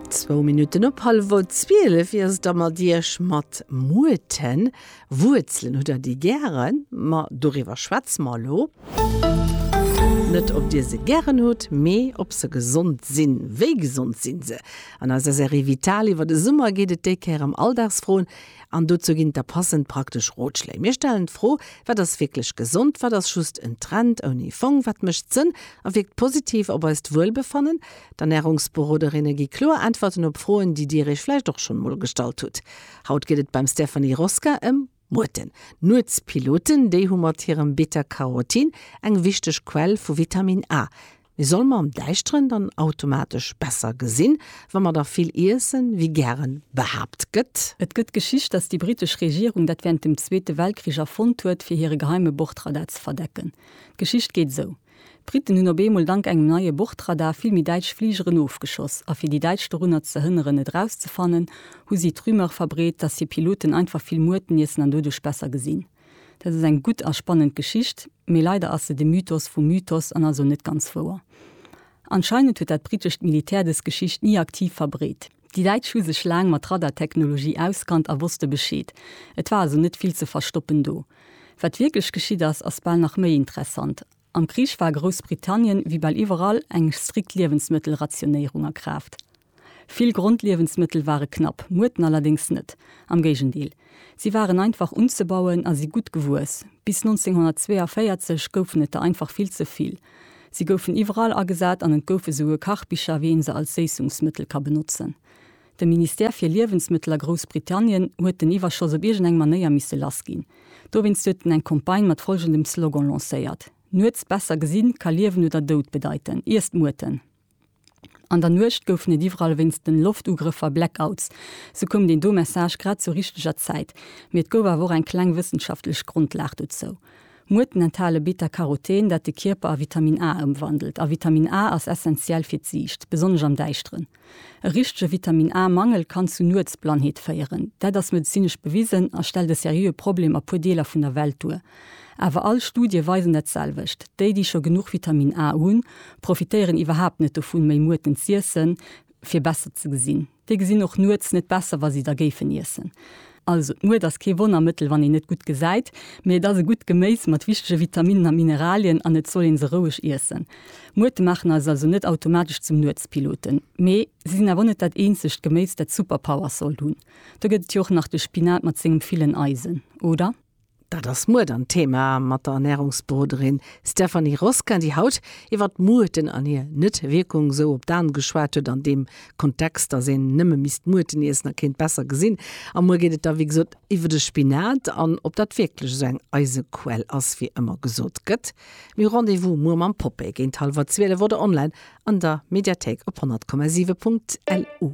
Zwou Minutten op hallwer 12 wier es da mat Iech mat Muurten. Wuerzelen, hutt Der déi gären? Ma doriwwer schwätze mer elo. Net ob Dir se gären hutt, mee ob se gesond sinn. Wéi gesond sinn se? An eiser Serie Vital iwwer de Summer geet et déi Kéier ëm Alldagsfroen, An dozou ginn et da passend praktesch Rotschléi. Mir stellen d'Fro, Wat ass wierklech gesond? Wat ass just en Trend ouni Fong? Wat mécht Sënn a wierkt positiv op eist Wuelbefannen? D'Ernärungsberoderinne gi kloer Äntwerten op Froen, déi Dir Iech vläicht och schonn emol gestallt hutt. Haut geet et beim Stephanie Rosca ëm Muerten. Nuetspiloten, déi hu mat hirem Beta-Carotin eng wichteg Quell vu Vitamin A. Mee soll mer am Däischteren dann automatesch besser gesinn, wa mer da vill iessen, wéi gären behaapt gëtt? Et gëtt d'Geschicht, dass déi britesch Regierung dat wärend dem Zweete Weltkrich erfonnt huet, fir hire geheime Bordradar ze verdecken. D'Geschicht geet esou, D'Briten hunn op eemol dank engem neie Bordradar vill méi däitsch Fligeren ofgeschoss, a fir déi Däitsch dorunner ze hënneren, et erauszefannen, hu si d'Rumeur verbreet, dass hir Piloten einfach vill Muerten iessen an doduerch besser gesinn. Dat ass eng gutt a spannend Geschicht, mee leider ass se de Mythos vum Mythos an also net ganz wouer. Anscheinend huet dat brittescht Militär dës Geschicht ni aktiv verbreet. Déi Däitsch hu sech laang mat Radartechnologie auskannt a wosste Bescheed. Et war also net vill ze verstoppen do. Wat wierklech geschitt ass, ass bal nach méi interessant. Am Krich war a Groussbritannien, wéi bal iwwerall, eng strikt Liewensmëttelrationéierung a Kraaft. Vill Grondliewensmëttel ware knapp, Muerten allerdéngs net, am Géigendeel, si waren einfach unzebauen a si gutt gewuess. Bis 1942 goufen et der einfach vill ze vill. Si goufen iwwerall agesat an et goufe souguer Kachbicher, wéi ee se als Séissungsmëttel ka benotzen. De Ministère fir Liewensmëttel a Groussbritannien huet den Iwwerschoss op iergend eng Manéier misse lass ginn. Dowéinst huet en eng Campagne mat folgendem Slogan lancéiert, Nuets besser gesinn ka Liewen oder Doud bedeiten, iesst Muerten! An der Nuecht goufen et iwwerall wéinst den Loftugrëffer Blackouts. Sou koum deen do Message grad zur richteger Zäit. Mee et gouf awer och eng kleng wëssenschaftlech Grondlag dozou. Muerten enthale Beta-Caroten, dat de Kierper a Vitamin A ëmwandelt. A Vitamin A ass essentiell fir d'Siicht, besonnesch am Däischteren. E richtege Vitamin A Mangel kann zu Nuetsblannheet féieren. Dat ass medezinesch bewisen a stellt e seriöe Problem a puer Deeler vun der Welt duer. Awer all Studie weisen dat selwecht, déi déi scho genuch Vitamin A hunn, profitéieren iwwerhaapt net dovun méi Muerten z'iessen fir besser ze gesinn. Déi gesinn och Nuets net besser wa si der géifen iessen. Also d'Mued ass kee Wonnermëttel, wann een net gutt gesäit, mee et ass e gutt Geméis mat wichtege Vitaminnen a Mineralien an et soll ee se roueg iessen. Muerte maachen eis also net automatesch zum Nuetspiloten, mee si sinn awer och net dat eenzegt Geméis, dat Superpowers sollt hunn. Do gëtt et jo och nach de Spinat mat sengem villen Eisen, oder? Dat ass muer dann d'Thema mat der Ernärungsberoderin Stephanie Roskin, déi haut iwwer d'Muerten an hir Net-Wierkung esou op d'An geschwat huet an deem Kontext, dass een nëmme misst Muerten iessen a kéint besser gesinn. A muer geet et da wéi gesot iwwer de Spinat an ob dat wierklech esou eng Eisequell ass wéi ëmmer gesot gëtt. Mee Rendez-vous muer mam Popeye géint hallwer 12 oder online an der Mediathéik op 100,7.lu.